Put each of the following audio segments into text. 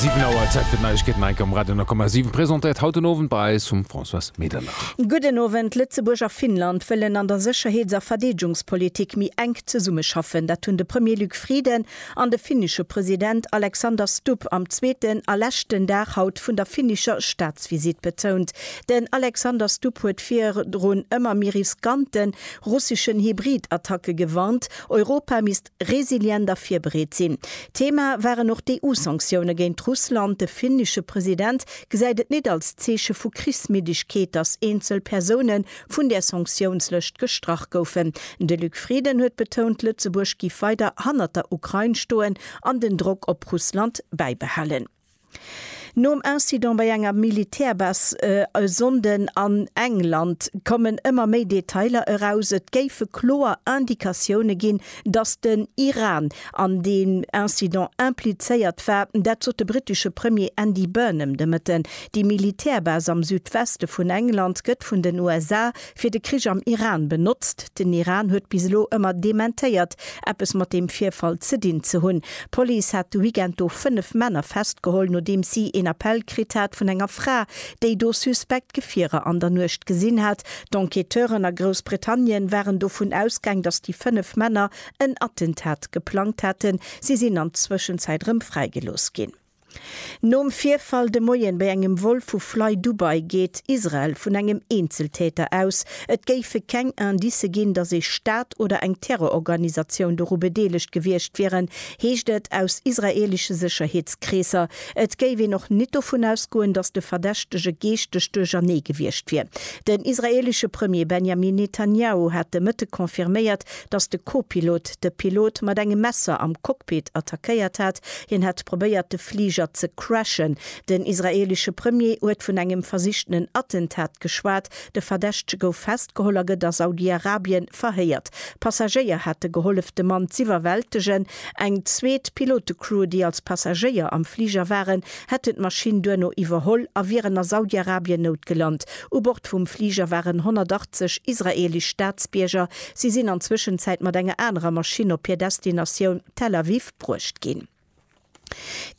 7 Auer, Zäit fir d'Neiegkeeten hei um Radio 10,7, presentéiert haut den Owend bei eis vum Françoise Medernach. Gudden Owend. Lëtzebuerg a Finnland wëllen an der Sécherheets a Verdeedgungspolitik méi enk zesummeschaffen. Dat hunn de Premier Luc Frieden an de finnesche President Alexander Stubb am zweeten a leschten Dag haut vun der finnescher Staatsvisitt betount. Den Alexander Stubb huet virun ëmmer méi riskanten russeschen Hybridattacke gewarnt. Europa misst resilient a virbereet sinn. Thema waren och d'EU-Sanktioune géint Russland. De finnesche President gesäit et nit als Zeeche vu Krichsmiddegkeet, datt eenzel Persoune vun där Sanktiounslëscht gestrach goufen. De Luc Frieden huet betount, Lëtzebuerg giff weider hannert der Ukrain stoen an den Drock op Russland bäibehalen. Nom Incident bei enger Militärbase e Sonnden an England kommen ëmmer méi Detailer eraus. Et géife kloer Indikatioune ginn, datt den Iran an deem Incident implizéiert war. Dat sot de brittesche Premier Andy Burnham de Mëtten. Déi Militärbase am Südweste vun England gëtt vun den USA fir de Krich am Iran benotzt. Den Iran huet bis elo ëmmer dementéiert, eppes mat deem Virfall ze dinn ze hunn. D'Police hat de Weekend do fënnef Männer festgeholl, nodeems si een Appell kritt hat vun enger Fra, déi do suspekt Gefierer an der Nuecht gesinn hat. D'Enquêteuren a Groussbritannien waren dovun ausgaang, datt déi fënnef Männer en Attentat geplangt haten. Si sinn an Zwëschenzäit erëm fräigelooss ginn. Nom Virfall de Moien bei engem Vol vu FlyDubai geet Israel vun engem Eenzeltäter aus. Et géife keng Indicë ginn, datt ee Staat oder eng Terrororganisatioun doru bedeelegt gewiescht wieren, heescht et aus israeelesche Sécherheetskreesser. Et géif een och nit dovun ausgoen, datt de Verdächtege geeschteg duerchernee gewiescht wier. Den israeelesche Premier Benjamin Netanjahu hat de Mëtte confirméiert, datt de Kopilot de Pilot mat engem Messer am Cockpit attackéiert hat, hien hätt probéiert de Fliger ze crashen. Den israeelesche Premier huet vun engem versichtenen Attentat geschwat. De Verdächtege gouf festgeholl a gëtt a Saudi-Arabien verhéiert. Passagéier hate gehollef de Mann z'iwwerwältegen. Eng zweet Pilote-Crew, déi als Passagéier am Fliger waren, hätten d'Maschinn duerno iwwerholl a wieren a Saudi-Arabien noutgelant. U Bord vum Fliger waren 180 israeelesch Staatsbierger, Si sinn an Zwëschenzäit mat enger anerer Maschinn op hir Destinatioun Tel Aviv bruecht ginn.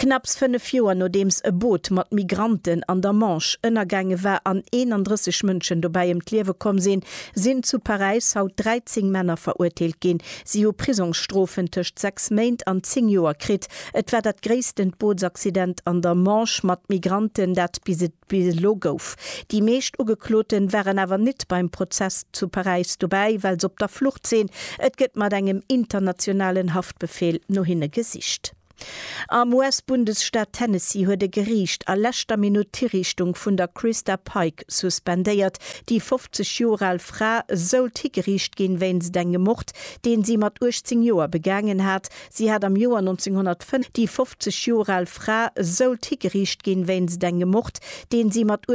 Knapps fënnef Joer nodeems e Boot mat Migranten an der Manche ënnergaange war an 31 Mënschen dobäi ëm d'Liewe komm sinn, sinn zu Paräis haut 13 Männer verurteelt ginn. Si hu Prisongsstrofen tëscht sechs Méint an zéng Joer kritt. Et war dat gréissten Bootsaccident an der Manche mat Migranten, dat bis Bis elo gouf. Déi meescht Ugekloten waren awer nit beim Prozess zu Paräis dobäi, well se op der Flucht sinn. Et gëtt mat engem internationalen Haftbefehl no hinne gesicht. Am US-Bundesstaat Tennessee huet e Geriicht a leschter Minutt d'Hiriichtung vun der Christa Pike suspendéiert. Déi 50 Joer al Fra sollt higeriicht ginn wéinst engem Mord, deen si mat 18 Joer begaangen hat, Si hat am Joer 1905 déi 50 Joer al Fra Soult higeriicht ginn wéinst engem Mord, deen si mat